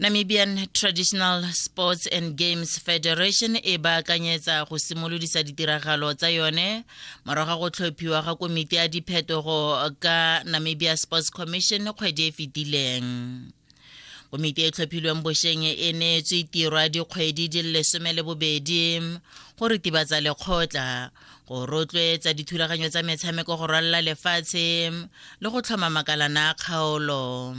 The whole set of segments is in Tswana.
Namibian Traditional Sports and Games Federation e baakanyetsa go simolodisa ditiragalo tsa yone morago go tlhophiwa ga komiti ya diphetogo ka Namibia Sports Commission kgwedi e fetileng komiti e tlhophilweng bosheng e neetswe tirwa dikgwedi di lesome le bobedi go ritibatsa lekgotla go rotloetsa dithulaganyo tsa metshameko go rwalela lefatshe le go tlhoma makalana a kgaolo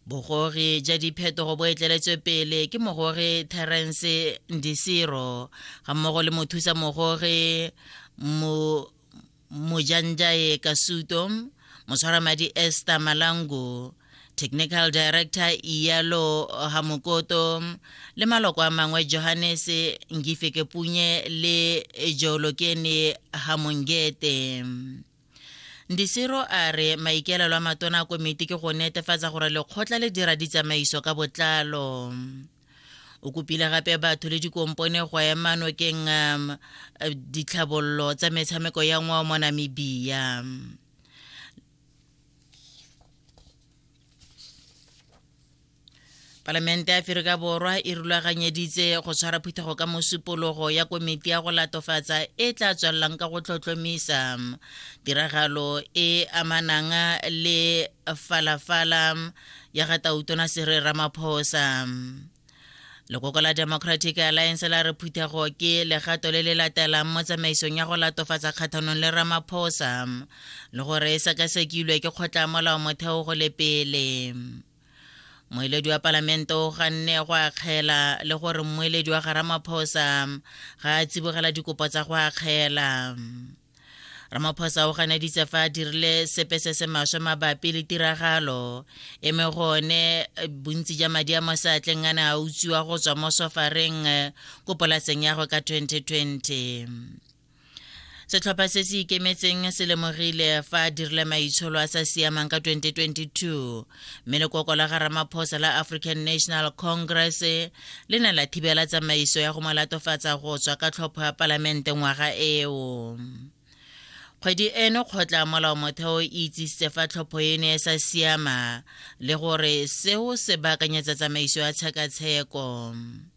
bogogi ja diphetogo bo etleletswe pele ke mogogi terence ndisiro ga mmogo le mothusa mogogi mojanjae kasuto motshwaramadi ester malango technical director iyalo hamokoto le maloko a mangwe johannes ngifeke punye le joolokene hamongete ndisiro a re maikaelelo a matona a komiti ke go netefatsa gore lekgotla le dira ditsamaiso ka botlalo o kopile gape batho le dikompone go ema nokeng um, ditlhabololo tsa metshameko ya ngwao mo namibia palamente ya aferika borwa e rulaganyeditse go tshwara phuthego ka mosupologo ya komiti ya go latofatsa e tla tswelelang ka go tlhotlhomisa tiragalo e amanang le falafala ya ga tautona sere ramaphosa lekoko la democratic alliance la re phuthego ke legato le le latelang mo tsamaisong ya go latofatsa kgathanong le ramaphosa le gore e sekasekilwe ke kgotla molao motheo go le pele moeledi wa palamente o ganne go akgela le gore mmoeledi wa ga ramaphosa ga a tsibogela dikopo tsa go akgela ramaphosa o ganeditse fa a dirile sepe se se maswe mabapi le tiragalo e me gone eh, bontsi ja madi a mo seatleng a ne a utswiwa go tswa mo sofareng eh, ko polaseng ya go ka 2020 setlhopha se se ikemetseng se lemogile fa a dirile maitsholo a sa siamang ka 2022 mme lekoko la ga ramaphosa la african national congress le ne la thibela tsamaiso ya go mo latofatsa go tswa ka tlhopho ya palamente ngwaga eo kgwedi eno kgotla molao motheo e itsisitse fa tlhopho eno e sa siama le gore seo se baakanyetsa tsamaiso ya tshekatsheko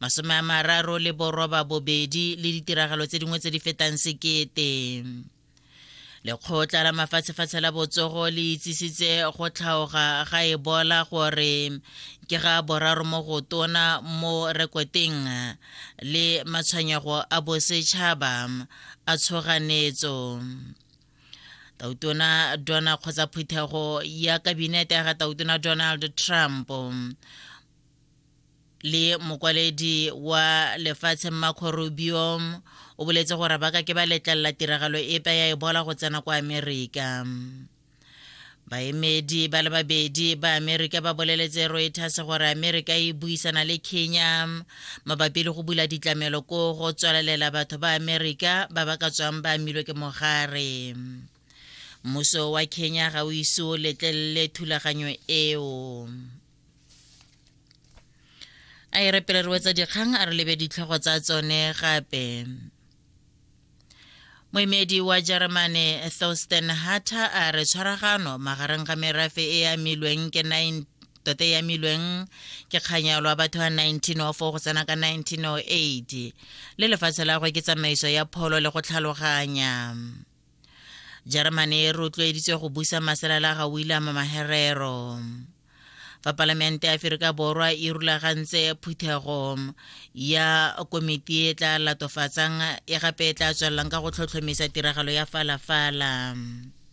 masome a mararo le boroba bobedi le ditiragalo tse dingwe tse di fetang sekete lekgotla la mafatshefatshe la botsogo le itsisitse go tlhaoga ga ebola gore ke ga boraro mo go tona mo rekoteng le matshwenyego a bosetšhaba a tshoganetso tautona dona kgotsa phuthego ya kabinete ya ga tautona donald trump le mokwaledi wa lefatshe mmakgo rubio o boletse gore ba ka ke ba letlelela tiragalo epe ya ebola go tsena kwa amerika baemedi ba le babedi ba amerika ba boleletse reuters gore amerika e buisana le kenya mabapi le go bula ditlamelo ko go tswalelela batho ba amerika ba ba ka tswang ba amilwe ke mogare mmuso wa kenya ga o ise o letlelele thulaganyo eo a e re pele re wetsa dikgang a re lebe ditlhogo tsa tsone gape moemedi wa jeremane thorsten hatter a re tshwaragano magareng ga merafe e e amilweng ke 9 tota e amilweng ke kganyalo a batho ba 1904 go tsena ka 1908 le lefatshe la gwe ke tsamaiso ya pholo le go tlhaloganya jeremane e rotloeditswe go busa masela la ga william maherero fa palamente ya aferika borwa e rulagantse phuthego ya komiti e tla latofatsang e gape e tla tswelelang ka go tlhotlhomisa tiragalo ya falafala fala.